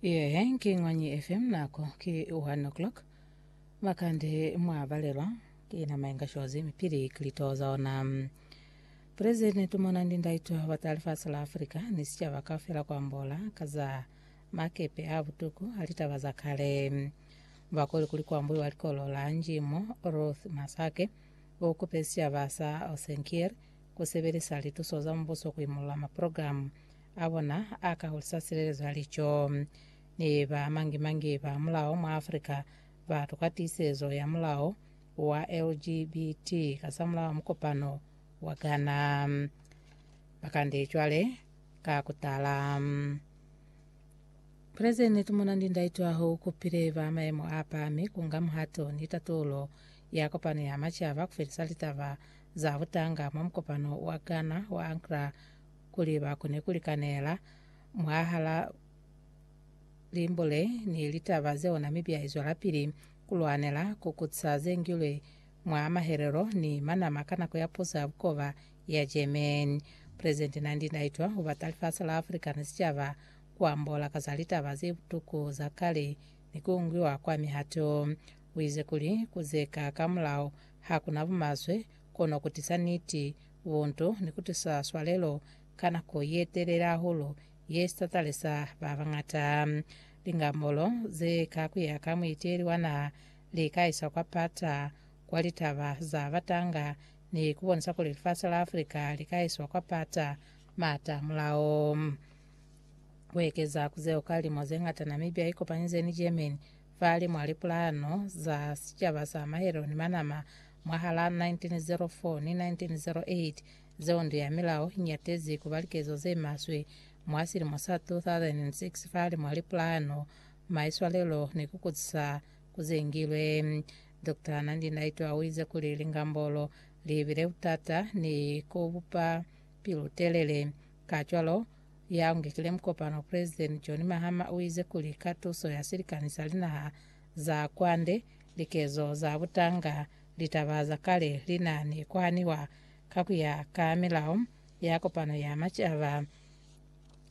Yehe ki Ngwanyi FM nako ki 1 o'clock makande mwa balelwa ki nama inga shozi mipili kilito za ona President tumona ndi ndaito bata lifasi la Africa ni sicaba kaufela kwambola ka za makepe a butuku a litaba za kale bakoli kuli kwambuiwa likolo la njimo Ruth Masake o kupe sicaba sa Osenkier kusebelisa lituso za mubuso kuimulula maprogramu a bona a ka hulisa silelezo ya lico. Ni ba mangi-mangi ba mulao mwa Afrika ba tokwa tiisezo ya mulao wa LGBT kasamulaho mukopano wa Ghana. Ba kande cwale ka ku tala. Pulezidenti Tumona Ndindaitwaho u kupile ba mayemo a pami ku nga muhato ni tatulo ya kopano ya macaba ku felisa litaba za butanga mwa mukopano wa Ghana wa Accra kuli ba kone ku likanela mwahala limbo le ni litaba ze ona mi bya izwelapili ku lwanela ku kuca ze ngilwe mwa mahelelo ni manama ka nako ya puso ya bukoba ya Germany. Presidenti Nandi Ndaitwah u bata lifasi la Africa ni sicaba ku ambola ka za litaba ze butuku za kale ni ku ngiwa kwa mihato. U ize kuli ku ze ka ka mulao ha ku na bumaswe, kono kutisa niti, buntu, ni kutisa swalelo ka nako yetelele hahulu ye sitatalisa ba bañata. Lingamolo ze ka kuya ka muiteli wa naha li ka isa kwa pata, kwa litaba za batanga, ni kubonisa kuli lifasi la Africa li ka iswa kwa pata maata mulao. Kuekeza ku zeo, ka lilimo zeñata Namibia ikopanyize ni Germany, Fale mwa lipulano za sicaba sa mahelo ni manama mwahal'a 1904 ni 1908, zeo ndu ya milao i ñatezi ku ba likezo ze maswe. Mwa silimo sa 2006, fale mwa lipulano, maiswalelo ni ku kutisa ku zengilwe. Doctor Nandi Ndaitwah u ize kuli lingambolo li bile butata ni ku bupa pilu-telele. Kacwalo, Ya ngekile mukopano President John Mahama uize kuli ka tuso ya silikani sa linaha za kwande, likezo za butanga, litaba za kale lina ni kuhaniwa ka kuya ka milao ya kopano ya macaba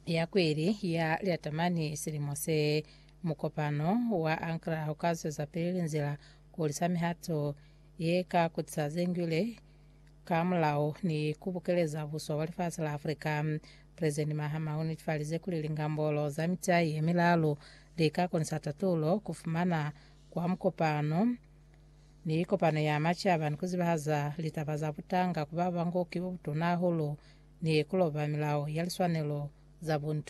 ya kweli ya Lyatamani silimo se. Mukopano wa Ankara uka zwezapili linzila kuhulisa mihato ye ka kutisa zengwile Ka mulao ni ku bukeleza buso bwa lifasi la Afrika, Presidenti Mahama u netifalize kuli lingambolo za mitai ye milalu li ka konisa tatulo, ku fumana kwa mukopano ni kopano ya macaba ni ku zibahaza litaba za butanga ku ba ba ngo ki bo butuna hahulu ni ku loba milao ya liswanelo za buntu.